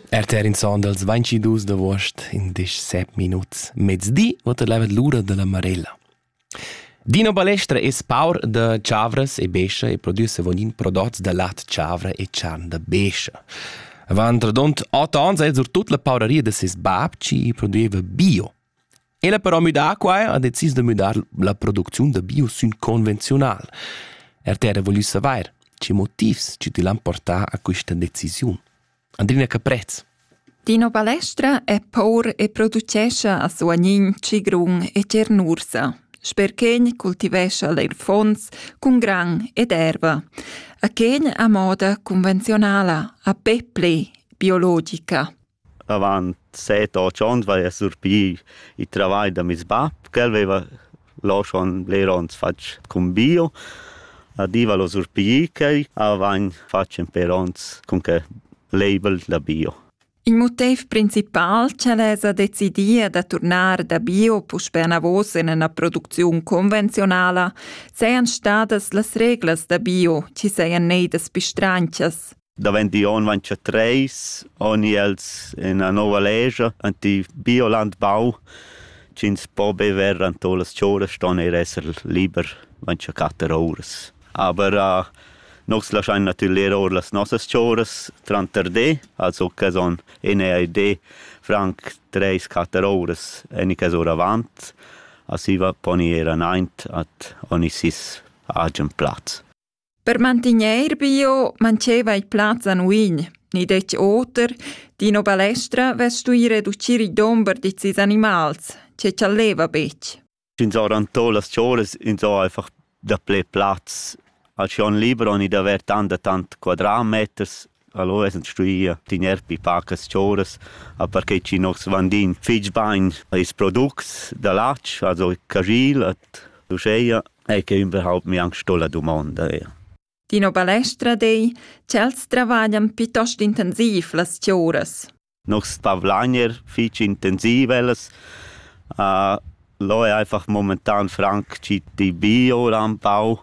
RTR in son dals 22 d'agost, in disch sep minuts, mezdi, vota levet l'ura della Marella. Dino Balestra es paur da chavras e bescha e produce vonin prodots da lat chavra e charn da bescha. Avant radont 8 ans è sur tut la pauraria da ses bab ci produeva bio. El ha però müdà quai ha decis da müdar la producziun da bio sün convenziunal. RTR voglü savair, che motivs chi til han portà a quista decisiun. Andrina Caprez. Dino Balestra è por e producescha a Suagnin, Cigrun e Cernursa. Sperchegn cultivescha leir fons cun gran ed erva. A Chen a moda convenzionala, a peple, biologica. avant set otg onns vaia surpì il travagl da meis bap, ch'el veva là schon bler ons fatg cun bio. A di val o surpiglir quai, a vagn fatg per ons cun que label da bio. Il motiv principal ch'el esa decidia da turnar da bio puspè anavos in üna producziun convenziunala sajan stadas las reglas da bio chi sajan neidas pistranchas. Davent di on vainsa treis, oni els ena nova legia, ant i biolandbau, ch'ins po bever ant las chouras ston eir esser liber vainsa quatter ouras. Aber uh, nus laschain natüralmeir our las nossas chouras tranter de, also que son enea e de franc treis, quatter ouras en i ora avant, a siva poni eir anaint at oni sis agen plaz. Per mantegnair bio mancheva il plaz a nuin, ni detg oter, d'ina balestra vess stuì reducir il dumber da ses animals, che chaleva betg. Ins ha rantà las cholas, ins ha einfach daplè plaz. Al schon liber han i d'aver tant e tant quadratmeters. Allora esen stuì tgnair pi pacas choras, a perche chi noss vandin fich bain ils products da latg, also cajil et uscheia, e que überhaupt mi anc sto la dumonda eir. Dino Balestra dei, ch'els travaglian piitost intensiv las choras. Nos tavlagner fich intensiv ellas. lò è einfach momentan franc chi di bi oura ün pau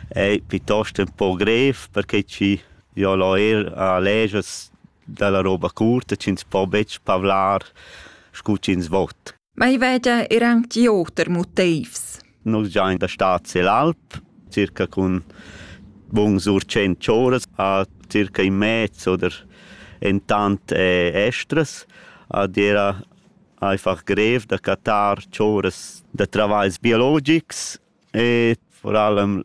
e pitost ün po grev perche chi jo l'ho eir legias da la roba curta chi'ns po betg pavlar scu chi'ns vot. Mai veda er anc di oter motivs. Nus giain da stad sel alp, circa cun buns ur cent choras a circa in mez oder en tant estras. Ad era einfach grev da cattar choras da travagls biologics e vor allem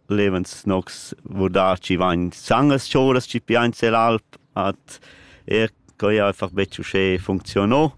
lebens nox vordaci vain sangas choras ci piain sel alp at er coi einfach betg uschè funziono.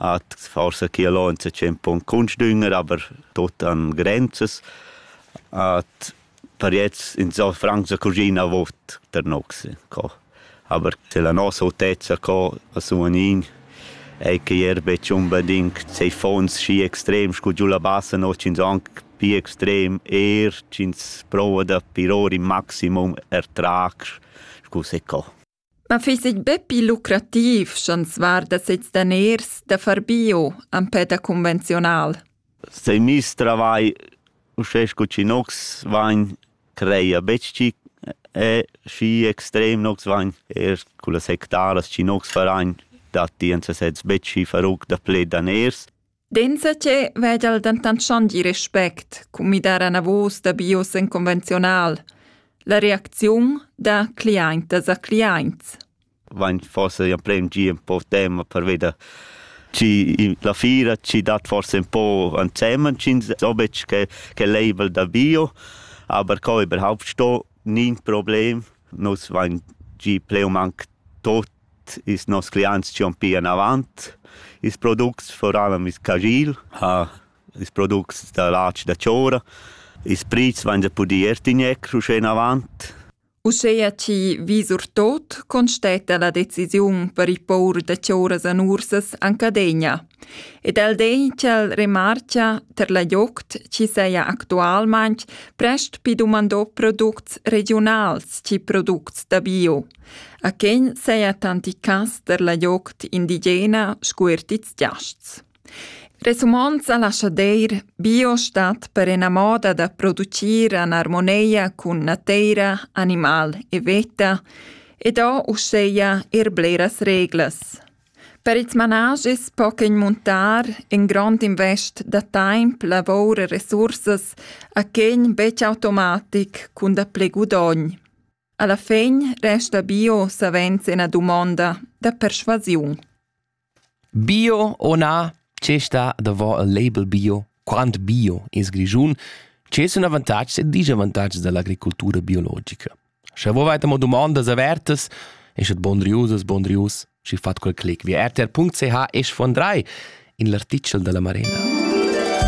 Hat forsa chi alonza tschient pon cuntsdünger, aber tuot han grenzas. Hat per jetzt insò franc sa cuschina vot der noxe co. Aber se la nossa autezza co a suonin ei che ier betg unbedingt sei fons schi extrem scu giù la bassa no ch'ins anc pi extrem, eir ch'ins prova da piror in maximum er trac scu se co. Ma fiss eir be pii lucrativ sch'ans varda sezs daners da far bio empè da convenziunal. Sai miss travai uschè sco chi nox vain creia betg chi e schi extrem nox vain eir cullas hectaras chi nox farain datti ins sezs betg schi faruc da pled daners. Denzatge vegel dentant schon di respect cun midar anavos da bios en conventional. La reacziun da cliaintas a cliaints. Vain forse ja prem gi un po tema per veder ci la fira ci dat forse un po ansemen cins obetsch che che label da bio aber co überhaupt sto nin problem nus vain gi pleum anc tot Ils noss cliaints dschan pia enavant. Ils products furavan ils cagil, ha ils products da latg da chora. Ils prits vain da pudir er tigner uschè enavant. Uscheia chi vis our tot constetta la decisiun per il pour da choras an ursas an Cadegna. Ed el den ch'el remarcha ter la joct chi seia actualmaing prest pi dumandò products regiunals chi products da bio. A quegn seia tanti cas der la joct indigena scu er tits giasts. Resumond sa lascha deir, bio stat per ena moda da producir an armoneia cun nateira, animal e veta, ed ho uscheia er bleras reglas. Per ils managis po quegn muntar in grond invest da taimp, lavor e resursas a quegn betg automatic cun da ple gudogn. Alla fegn resta bio savens ina dumonda da perschuasiun. Bio o na, che sta davò il label bio? Quant bio es Grischun? Che sun avantatgs e disavantatgs da l'agricultura biologica? Sche vo vaita mo dumondas avertas, eschet bondriusas, bondrius, schi fat quel clic via rtr.ch esch von drei in l'artichel da la Marena.